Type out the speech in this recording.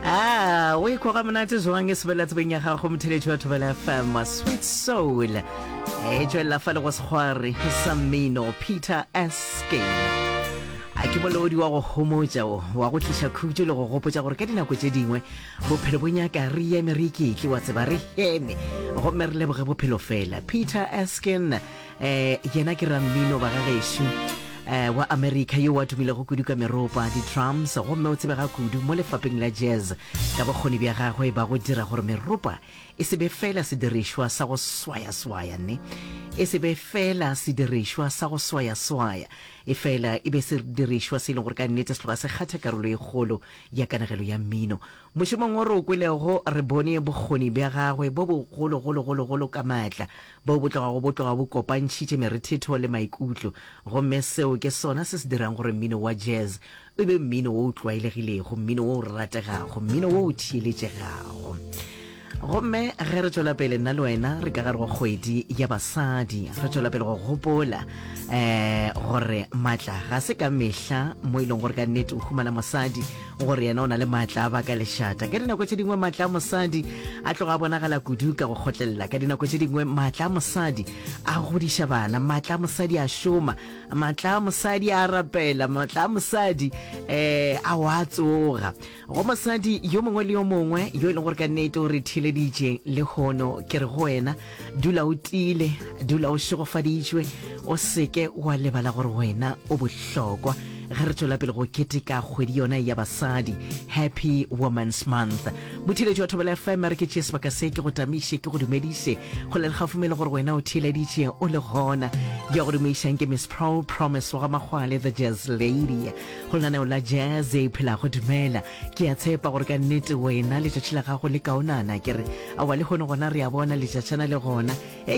a o ikho ga monate jwang e sebela tsebeng ya gago motheletši wa thobela fm sweet soul e tswelela fa le go sekgware sa mmino peter eskin a ke molodi wa go homotša o wa go tliša khutšo le go gopotša gore ka dinako tše dingwe bophelo bo nyaka re eme re iketle wa tseba re heme gomme re leboge bophelo fela peter eskin um yena ke rammino ba ga gešo um wa america yo wa tumilego kudu ka meropa di-drums gomme o tsebega kudu mo lefapeng la jazz ka bokgoni bja gagwe ba go dira gore meropa e se be fela sedirišwa sa go swayaswaya ne e se be fela sedirišwa sa go swayaswaya e fela e be sedirišwa se e leng gore ka nnete se tloga se kgatha karolo e kgolo ya kanegelo ya mmino mošomong o re o kwelego re bone bokgoni bja gagwe bo bogologologologolo ka maatla Boo bo tlogago bo tloga bo kopantšhitše merethetho le maikutlo, gomme seo ke sona se se dirang gore mmino wa jazz e be mmino wo o tlwaelegilego, mmino wo o rategago, mmino wo o theeletšegago. Gomme ge re tšwela pele, nna le wena re ka gare go kgwedi ya basadi, re tšwela pele go gopola um gore maatla ga se ka mehla mo e lego gore ka nnete o humana mosadi, gore yena o na le maatla a baka lešata ka dinako tše dingwe maatla a mosadi a tloga a bonagala kudu ka go kgotlelela ka dinako tše dingwe maatla a mosadi a godiša bana maatla a mosadi a šoma maatla a mosadi a rapela maatla a mosadi um a wa tsoga go mosadi yo mongwe le yo mongwe yo e leng gore ka nnete o re theleditše le kgono ke re go wena dula o tiile dula o šegofaditšwe o seke wa lebala gore wena o bohlokwa ge re tswela pele go keteka kgwedi yona ya basadi happy women's month botheletši wa thobela fm re ke tšee sebaka se ke go tamiše ke go dumediše go le lekgafume le gore wena o theeleditše o le gona ya go dumeišang ke miss pro promise wa ga makgwale the jazz lady go lenaneo la jazz e phelago dumela Ke a tshepa gore ka nnete wena letšatši la gago le kaonana, ke re. Aowa, le hono gona re a bona letšatšana le gona. Ei!